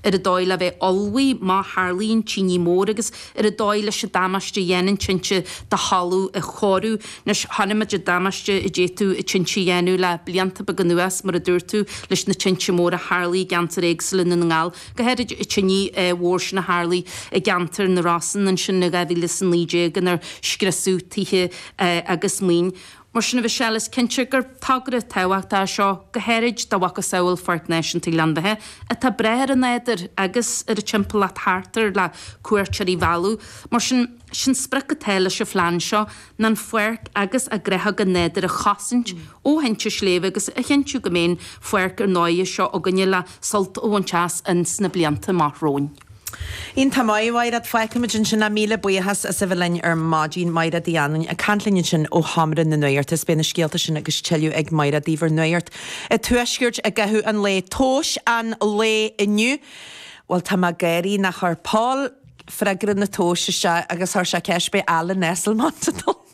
ar an dóigh le bheith ullmhaithe má tharlaíonn tine mór agus ar an dóigh leis an damáiste a dhéanann tinte do thalamh a chóiriú. Anois chonaic muid an damáiste a d'fhéadfadh tinte a dhéanamh le blianta beaga anuas, mar a dúirt tú, leis na tinte móra a tharlaigh i gceantair éagsúla i nDún na nGall, go háirid an tine mhór sin a tharlaigh i gceantar na Rosann ansin i 2019 inar scriosadh tithe agus maoin. Mar sin a Michelle is cinnte gur togra tábhachtach é seo go háirid do mhacasamhail Pháirc Náisiúnta Ghleann Bheatha atá ag brath ar an nádúr agus ar an timpeallacht thart air le cuairteoirí a mhealladh. Mar sin, sé an sprioc atá leis an phlean seo ná an pháirc agus a gnáthóga nádúrtha a chosaint ó thinte sléibhe agus a chinntiú go mbeidh an pháirc ar dóigh seo againne le sult a bhaint as ins na blianta amach romhainn. Iontach maith, a Mháiréad. Fágfaimid ansin é. Míle buíochas as a bheith linn ar maidin. Máiréad Uí Anluain ag caint linn ansin ó Sheomra na Nuachta is beidh na scéalta sin agus tuilleadh ag Máiréad daoibh ar Nuacht an Tuaiscirt i gcaitheamh an lae. Tomhais an lae inniu. Bhuel, tá mé ag gáirí nó chuir Paul freagra na tomhas isteach agus chuir sé ceist an mbeidh Alan Esslemont ag dul.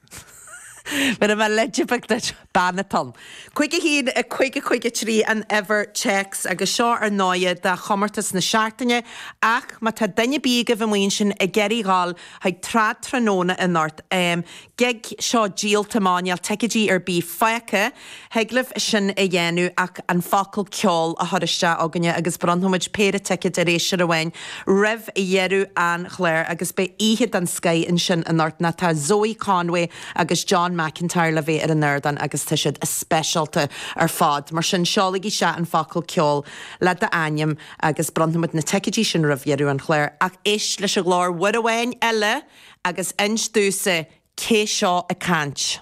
Mura mbeadh leid bheag duit, bean atá ann. Cúig a haon, a cúig, a cúig a trí an uimhir téacs agus seo ar ndóighe do chomórtas na seachtaine ach má tá duine ar bith agaibh amuigh ansin ag iarraidh dhul chuig Trad Tráthnóna anocht, em. gig, seó díolta, máinneáil, ticeidí ar bith fágtha. Thig libh sin a dhéanamh ach an focal 'ceol' a chur isteach chugainne agus bronnfaimid péire ticéad ar éisteoir amháin roimh dheireadh an chláir agus beidh oíche den scoith ansin anocht nó tá Zoe Conway agus John McIntyre le bheith ar an ardán agus tá siad speisialta ar fad. Mar sin, seolaigí isteach an focal 'ceol' le d'ainm agus bronnfaimid na ticéidí sin roimh dheireadh an chláir ach éist leis an ghlór uair amháin eile agus inis domhsa cé seo ag caint.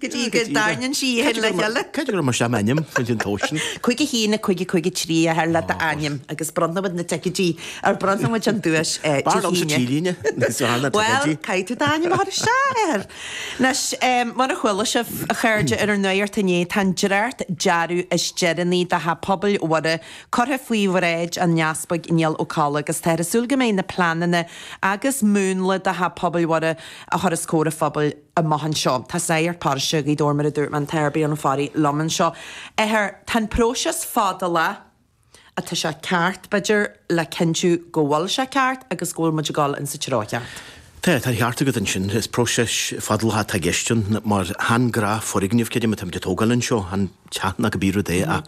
go dtí go dtaitneann sí itheann le chéile. Cad é go raibh mar sin ainm chuid an tó sin? Cúig a haon a cúig a cúig a trí le d'ainm agus bronnfaimid na ticéidí ar bronnfaimid an duais Dé hAoine. Bhuel caithfidh tú d'ainm a chur isteach ar Anois mar a chuala sibh a chairde ar an nuacht inné tá an dréacht dearadh is deireanaí de Theach Pobail Mhuire curtha faoi bhráid an Easpaig Niall Ó Colla agus táthar ag súil go mbeidh na pleananna agus múnla de Theach Pobail Mhuire a chur os comhair an phobail amach anseo. Tá sagart paróiste Ghaoth Dobhair mar a dúirt mé an tAthair Brian Ó Fearraigh liom anseo. A Athair, tá an próiseas fadálach ach tá sé ceart b'fhéidir le cinntiú go bhfuil sé ceart agus go bhfuil muid ag dul insa treo cheart. Tá, tá an ceart agat ansin. Is próiseas fadálach atá i gceist ann. Mar chan gnáthfhoirgneamh creidim atá muid ag tógáil anseo. An. teach nó cibé rud é ach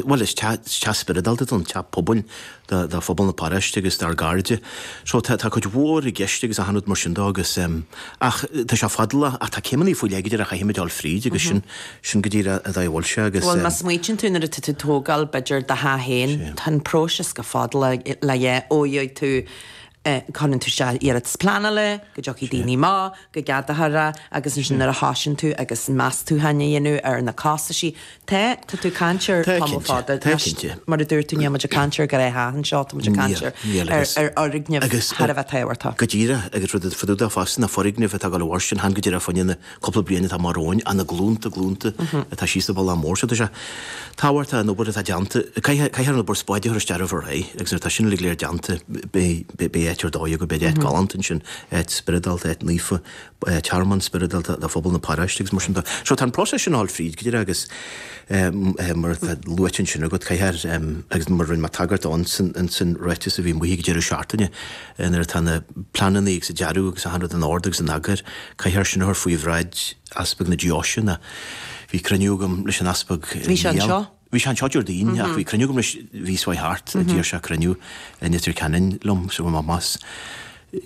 bhuel is teach spioradálta don teach pobail do phobal na paróiste agus dár gcairde. So tá cuid mhór i gceist agus achan rud mar sin de agus ach tá sé fadálach ach tá céimeanna faoi leith go díreach a chaithfimid dul fríd agus sin sin go díreach an dóigh a bhfuil sé agus. Bhuel má smaoitíonn tú nuair atá tú tógáil b'fheidir do theach féin tá an próiseas go fadálach le leith ó dheagh tú é Cuireann tú isteach iarratas pleanála, go dtiocfaidh Sea. daoine maith, go gceadaítear é, agus ansin Sea. nuair a thoisíonn tú agus meastacháin a dhéanamh ar na costaisí, tá, tá tú ag caint ar Tá tamall cinnte, fada, tá anois, cinnte. mar a dúirt tú, níl muid ag caint ar gharáiste anseo, tá muid ag caint Níl, ar, níl ar, agus, ar fhoirgneamh agus, thar a bheith tábhachtach. go díreach, agus rud fá dtaobh de fosta ná foirgneamh atá ag dul a mhairstin, chan go díreach fá choinne na. Cúpla bliain atá amach romhainn ach na glúnta, glúnta atá síos an bealach mór so, tá sé tábhachtach an obair atá déanta, caithfear an obair spáide a chur isteach roimh ré agus nuair atá sin uilig go léir déanta beidh áit ar dóigh agaibh, beidh áit galánta ansin, áit spioradálta, áit naofa, tearmann spioradálta do phobal na paróiste agus mar sin de. So tá an próiseas sin ag dul fríd go díreach agus mar atá luaite ansin agat caithfear, agus mar a rinne mé tagairt ansin, ráiteas a bhí amuigh ag deireadh seachtaine, nuair atá na pleananna agus an dearadh agus achan rud in ord agus in eagar, caithfear sin a chur faoi bhráid Easpag na Deoise. Bhí cruinniú agam leis an Easpag i Bhí sé anseo? Bhí sé anseo Déardaoin ach bhí cruinniú agam leis, bhíos uaidh thart, d'iarr sé cruinniú i Leitir Ceanainn liom so bhí mé,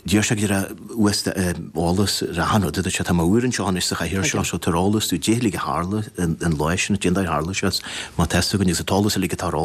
d'iarr sé go raibh uasta, eolas ar achan rud a dúirt sé tá mé úr anseo anois sa chathaoir seo so tabhair eolas, domh, caidé a tharla an lá sin, cén dóigh ar tharla sé, má tá 's againn agus an t-eolas uilig atá ar eolas.